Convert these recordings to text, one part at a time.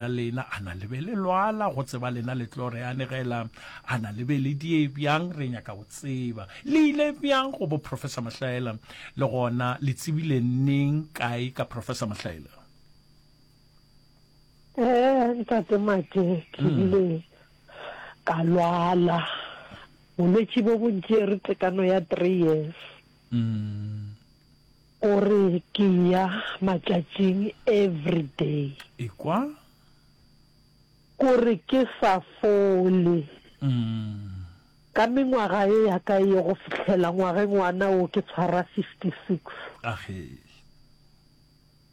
la lena, a na le be le lwala, go tseba lena le tlo re anegela, a na le be le die bjang, re nyaka go tseba le ile bjang go bo Professor Mahlaela, le gona le tsebile neng kae ka Professor Mahlaela? Eh, ntate Mate, ke hmm. ile ka lwala bolwetši bo bontši re tekano ya three years. Mm. O re ke ya matšatšing everyday. Ekwa? Ko re ke sa fole. Umm. Ka mengwaga ye ya ka ye go fihlela ngwageng wana wo ke tshwara 56. Agee.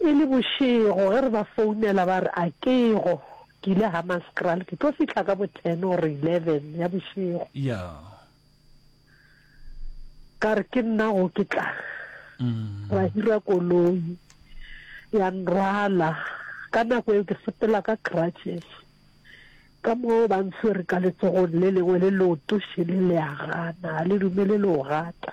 E le bošego ge re ba founela ba re a kego, ke ile Hammanskraal, ke tlo fihla ka bo ten or eleven ya bošego. Ya. Ka re ke nna go ke tla. Ra hira koloi ya nrwala ka nako eo ke sepela ka crutches ka moo ba ntshwere ka letsogong le lengwe le leoto šele le a gana ga le dumele le o gata.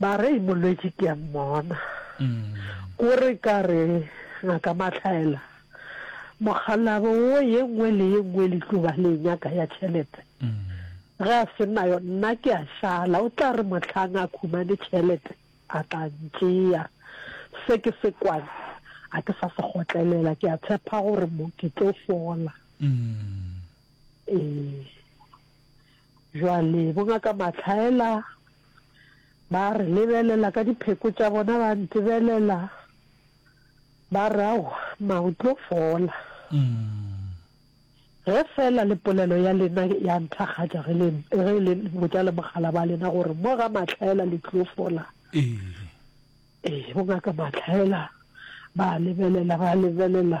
Ba re, Molwetši, ke a mmona. Ko re ka re, Ngaka Mahlaela, mokgalabo wo ye nngwe le ye nngwe le tlo ba le e nyaka ya tšhelete. Ge a se nayo, nna ke a šala. O tla re mohlang a khumane tšhelete, a tla ntšea. Se ke se kwane, ga ke sa se kgotlelela. Ke a tshepa gore mo ke tlo fola. Ee. Bjale Bongaka Matlhaela ba re lebelela ka dipheko tša bona, ba ntebelela, ba re, Aowa, mma o tlo fola. Ge fela le polelo ya lena ya nthakgatša ge le ge le botša le mogala ba lena gore mo ga Matlhaela le tlo fola. Ee, Bongaka Matlhaela ba lebelela, ba lebelela,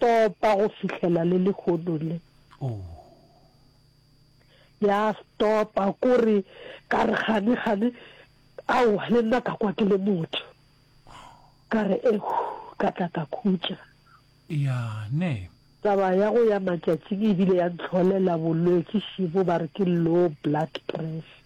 Topa go fihlela le lehono le. Ya stopa ko re ka re gane gane aowa le nna ka kwa ke le motho ka re ehu ka tla ka khutša ya ne taba ya go ya matšatšing e bile ya ntlholela bolwetsi šibo ba re ke low blood pressure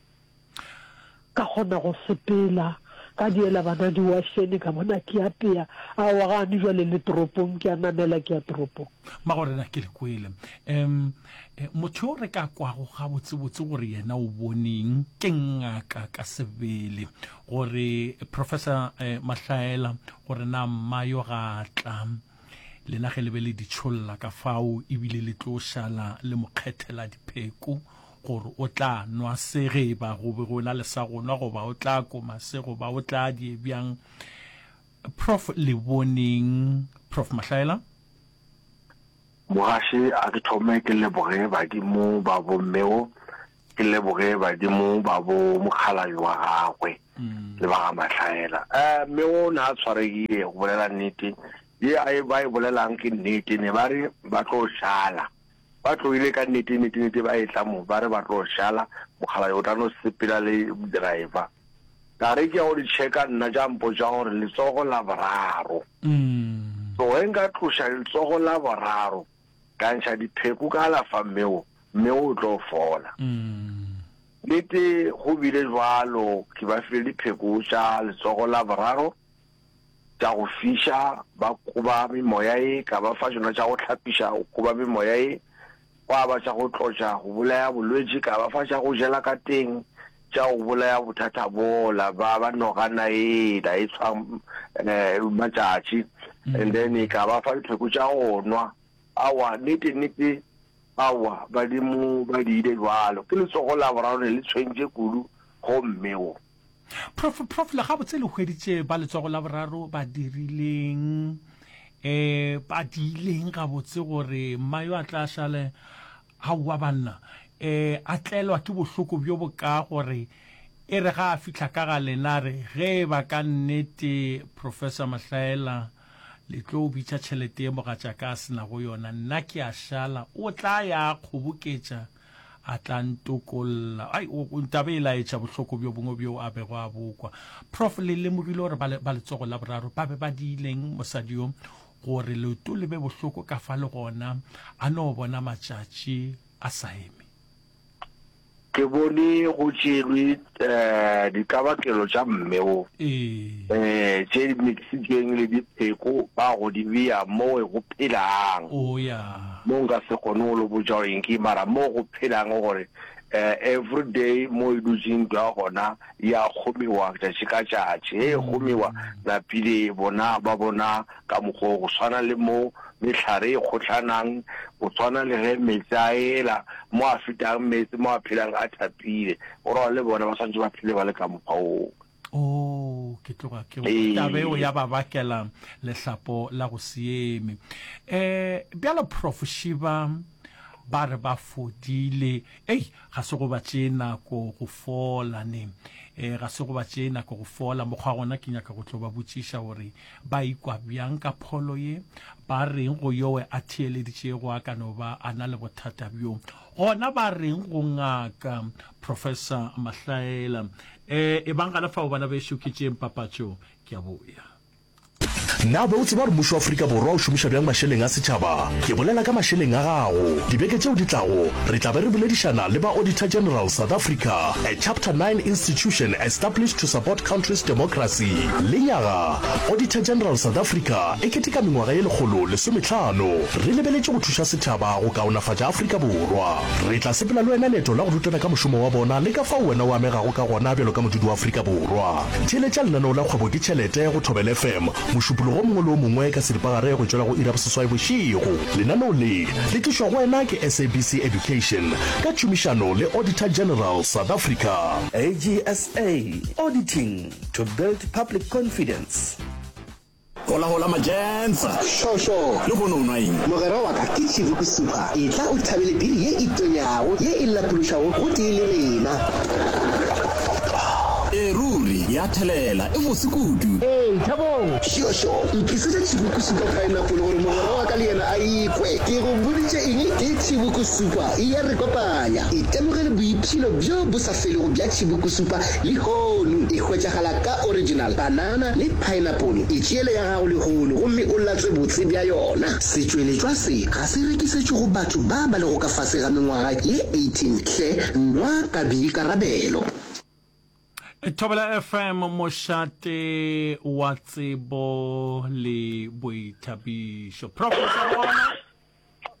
Ka kgona go sepela, ka diela bana diwashene, ka bona ke apea. Aowa, gane jwale le toropong, ke a namela ke ya toropong. Magorena, ke le kwele. Um, motho yo re ka kwago gabotsebotse gore yena o boneng ke Ngaka ka sebele, gore Professor eh, Mahlaela, gore na mma yo ga a tla, lena ge le be le ditšholla ka fao, ebile le tlo šala le mo kgethela dipheko, gore o tla nwa se ge e ba go be go na le sa go nwa goba o tla koma se goba o tla die bjang. Prof le boneng Prof Mahlaela? Mogaši a ke thome ke leboge badimo ba bo mmeo ke leboge badimo ba bo mokgalabi wa gagwe mm. le ba ga matlhaela um eh, mme o ne a tshwaregile go bolela nnete ye a e ba e bolelang ke nnete ne ba re ba tlo šala Ba tloile ka nnete, nnete, nnete ba etla mo, ba re ba tlo šala, mokgalabje o tla no sepela le driver. Ka re ke ya go di tšheka nna, tša mpotša gore letsogo la boraro. So ge nka tloša letsogo la boraro, ka ntšha dipheko ka alafa mme wo, mme wo o tlo fola. Nnete go bile bjalo, ke ba file dipheko tša letsogo la boraro. tša go fiša, ba koba memoya ye, ka ba fa tšona tša go hlapiša, go koba memoya ye, gwa ba tša go tlotša, go bolaya bolwetši, ka ba fa tša go jela ka teng, tša go bolaya bothata bola, ba ba nogana ela e tshwa um matšatši, mm. and then e ka ba fa dipheko tša go nwa. Awa, nete nete, awa, badimo ba diile jwalo, ke letsogo la boraro ne le tshwentše kudu go mme wo. Prof, prof le gabotse le hweditše ba letsogo la boraro ba dirileng eh ba diileng gabotse gore mma yo a tla šale aowa banna eh a tlelwa ke bohloko bjo boka gore e re ga a fihla ka ga lena re ge e ba ka nnete Professor Mahlaela le tlo bitša tšhelete ye mogatšaka a se nago yona nna ke a šala o tla ya kgoboketša A tla ntokolla. Ai, o, o tla be e laetša bohloko bjo bongwe bjoo a bego a bokwa. Prof, le lemogile gore ba, le, ba letsogo la boraro ba be ba diileng mosadi yo gore leoto le be bohloko ka fa le gona a no bona matšatši a sa eme? Ke bone go tšerwe eh, ditlabakelo tša mme wo eh, tše di mixitsweng le dipheko ba go di beya mo go phelang oh, mo nka se kgone go lo botša gore ke mara mo go phelang gore um every day mo e dutseng twa gona ya kgomiwa tšatši ka tšatši e kgomiwa napile bona ba bona Ka mokgwa wo, go swana le mo mehlare e kgohlanang, go swana le ge meetse a ela, mo a fetang meetse, mo a phelang a thapile, go ra gore le bona ba swanetše ba phele ba le ka mokgwa woo. Oo, ke tloga ke go tabe eo ya ba bakela lehlapo la go se eme. E, bjalo Prof. Shiba, ba re ba fodile. Ei, ga se go ba tšee nako go fola ne. E, ga se go ba tšee nako go fola. Mokgwa gona ke nyaka go tlo ba botšiša gore Ba ikwa bjang ka pholo ye? Ba reng go yowe a theeleditšego a ka no ba a na le bothata bjo? Gona ba reng go ngaka? Professor Mahlaela, E, ebang gana fao bana bešo ke tšeeng papatšo, ke a boya. Na o be o tseba gore mmušo wa Afrika Borwa o šomiša bjang mašeleng a setšhaba? Ke bolela ka mašeleng a gago. Dibeke tšeo di tlago, re tla be re boledišana le ba Auditor General South Africa, a Chapter Nine institution established to support country's democracy. Lenyaga, Auditor General South Africa e keteka mengwaga ye lekgolo lesometlhano. Re lebeletše go thuša setšhaba go kaonafatša Afrika Borwa. Re tla sepela le wena leeto la go rutana ka mošomo wa bona le ka fao wena o amegago ka gona bjalo ka modudi wa Afrika Borwa. Theeletša lenaneo la Kgwebo ke Tšhelete go Thobela FM mošupologo o mongwe le o mongwe ka seripagare go tšwela go iri ya boseswai bošego. Lenaneo le le tlišwa go wena ke SABC Education ka tšhomišano le Auditor General South Africa. AGSA, Auditing to build public confidence. Hola hola Majensa. Sho sho. Le go no nwa eng? Mogera wa ka ke Chivuku Super. Etla o thabele biri ye e tonyago ye e lapološago go tee le rena. E ruri ya thelela e bose kudu. Ee, thabong. Sho sho. Ntlisetša Chivuku Super pineapple gore mogera wa ka le yena a ikwe. Ke go boditše eng? Ke Chivuku Super. E ya re kopanya. Itemogele boiphilo bjo bo sa. se lego bja tšhibukusupa lehono e hwetšagala ka original banana le paenapolo. E tšeele ya gago lehono gomme o latswe botse bja yona. Setšweletšwa se ga se rekisetšwe go batho ba ba lego ka fase ga mengwaga ye 18 hle, nwa ka boikarabelo. Thobela FM, mošate wa tsebo le boithabišo. Professor gona?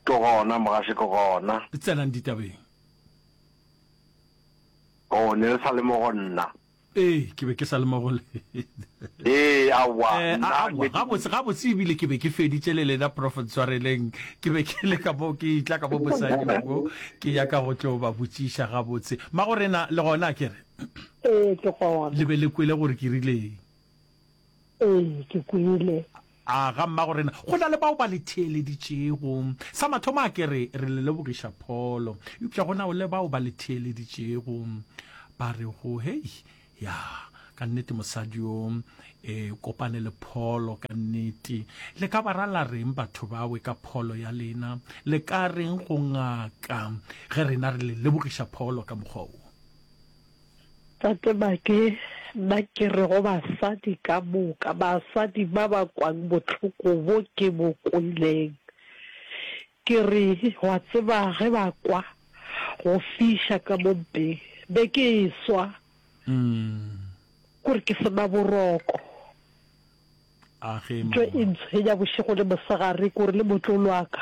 Ke gona mogashe ke gona. Tsenang ditabeng. Oh, ne le sa le mo go nna. Ee, ke be ke sa le mo go lena. Ee, aowa, Eh, a- nna aowa, ne ke- gabotse gabotse ebile ke be ke feditše le lena prof ntshwareleng ke be ke le ka mo ke itla ka mo mosadi wa mo ke ya ka go tlo ba botšiša gabotse magorena le gona ke re Ee, ke gona. le be le kwele gore ke rileng Ee, ke kwele. A ga mmagorena, go na le bao ba le theeleditšego. Sa mathomo a ke re, re le lebogiša pholo. Eupša go na o le bao ba le theeleditšego, ba re go, Hei, ya, ka nnete mosadi yo, e, kopane le pholo, ka nnete. Le ka ba ra la reng batho bawe ka pholo ya lena? Le ka reng go ngaka ge rena re le lebogiša pholo ka mokgwa wo? Tate ba ke ba ke re go basadi ka moka, basadi ba ba kwang bohloko bo ke bo kweleng, ke re, wa tseba ge ba kwa go fiša ka mo mpeng, be ke eswa kore ke sena boroko. Ntho e ntshwenya bošego le mosegare kore le motlolo wa ka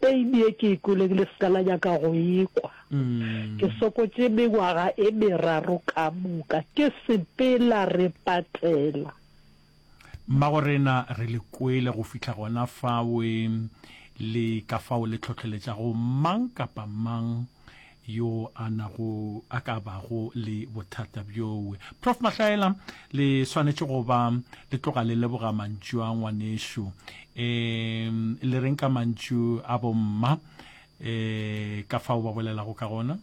Pain ye ke e kweleng le se ka la nyaka go e kwa. Ke sokotše mengwaga e meraro ka moka ke sepela re patela. Mmagorena, re le kwele go fihla gona fawe le ka fao le tlhohleletšago mang kapa mang yo a nago a ka bago le bothata bjoo. Prof. Mahlaela, le swanetše go ba le tloga le leboga mantšu a ngwanešu. E, le reng ka mantšu a bomma e, ka fao ba bolelago ka gona?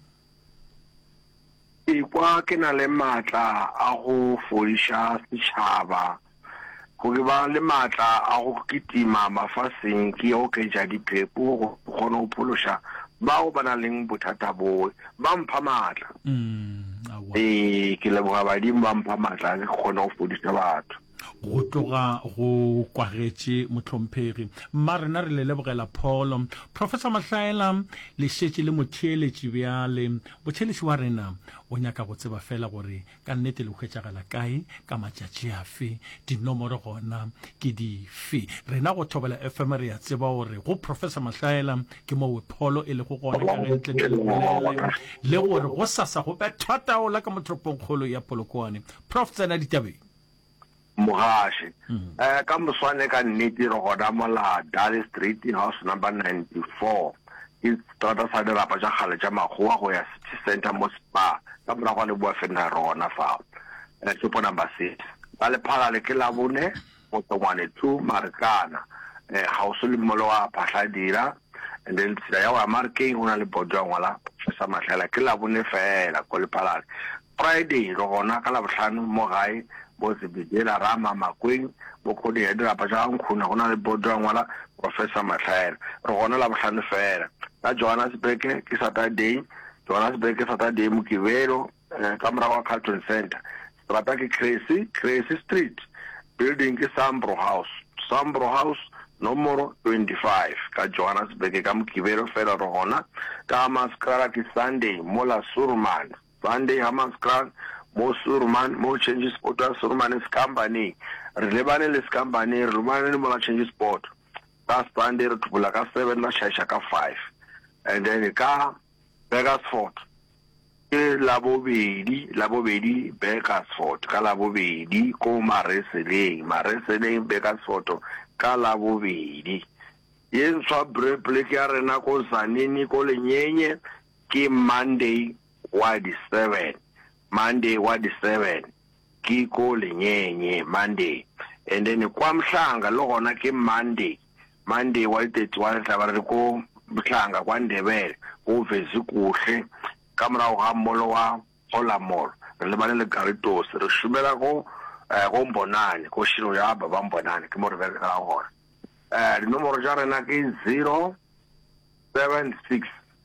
Ekwa ke na le maatla a go fodiša setšhaba Go ba le maatla a go kitima mafaseng ke oketša diphepo go kgone go phološa bao ba na leng bothata boe. Ba mpha maatla. Ee, ke leboga badimo ba mpha maatla ke kgone go fodisa batho. Go tloga go kwagetše mohlomphegi. Mma rena re le lebogela pholo. Professor Mahlaela le šetše le motheeletši bjale. Motheeletši wa rena o nyaka go tseba fela gore ka nnete le hwetšagala kae ka matšatši afe dinomoro gona ke dife rena go thobela fm re ya tseba gore go professor mahlaela ke mo wepholo e lego gona ka ge ntle tle lebolele le gore go sasa go bethwa taola ka motoropongkgolo ya polokoane prof tsena ditabeng Mugashi. Mm. Eh, ka moswane ka nnete re gona mola Dale Street, house number 94. Ke strata sa dirapa tša kgale tša makgowa go ya City Center mo Spar. Ka morago ga leboa fenna re gona fao. Eh, shopo number six. Ba le phala le ke labone, motsongwane two, marekana. Eh, ga o se le mmolo wa phahla dira. And then tsela ya wa markeng go na le bodo ya ngwala, fesa matlhela. Ke labone fela, ko le phala. Friday re gona ka Labohlano mo gae bo Zebedela Rama Makweng bo Kgodi ya dirapa tša ga Nkhuna go na le bodo a ngwala Professor Mahlaela re gona Labohlano fela ka Johannesburg ke Saturday Johannesburg ke Saturday Mokibelo ka morago ga Carlton Centre strata ke Cressy Cressy Street building ke Sambro House Sambro House nomoro 25 ka Johannesburg ka Mokibelo fela re gona ka Hammanskraal ke Sunday mola Surumane Sunday Hammanskraal, mo Suurman, mo Change Sport ya Suurman Sekambane. Re lebane le Sekambane, re lebane le mola Change Sport. Ka Sunday re thupola ka seven, ba šaiša ka five. And then ka Burgersfort, ke labobedi, labobedi Burgersfort, ka labobedi ko Mareseleng, Mareseleng Burgersfort, ka labobedi. Ye ntshwa Breplek ya rena ko Zanini, ko Lenyenye, Ke Monday wa di seven, Monday wa di seven ke ko lenyenye Monday and then kwa Mhlanga le gona ke Monday, Monday wa di thirty one re tla ba re le ko Mhlanga kwa Ndebele ko Vezikuhle ka morago ga molo wa Hola Mall re lebane le Garitosi re šomela ko ko Mbonane ko Shiro ya ba ba Mbonane ke mo re berekela gona. Dinomoro tša rena ke zero seven six.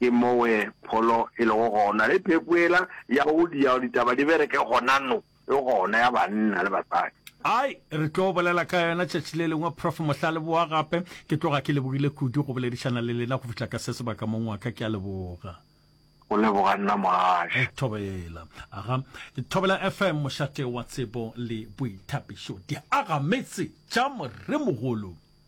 Ke mowe pholo e lego gona, le phepo yela ya go dia gore ditaba di bereke gonano e gona, ya banna le basadi. Ai, re tlo bolela ka yona tšatši le lengwe, Prof. Mohla leboa gape. Ke tloga ke lebogile kudu go boledišana le lena go fihla ka se sebaka, mong wa ka. Ke a leboga. Go leboga nna, Mogašwa. Thobela. Aga. Thobela FM, mošate wa tsebo le boithabišo. Di aga metse tša Moremogolo.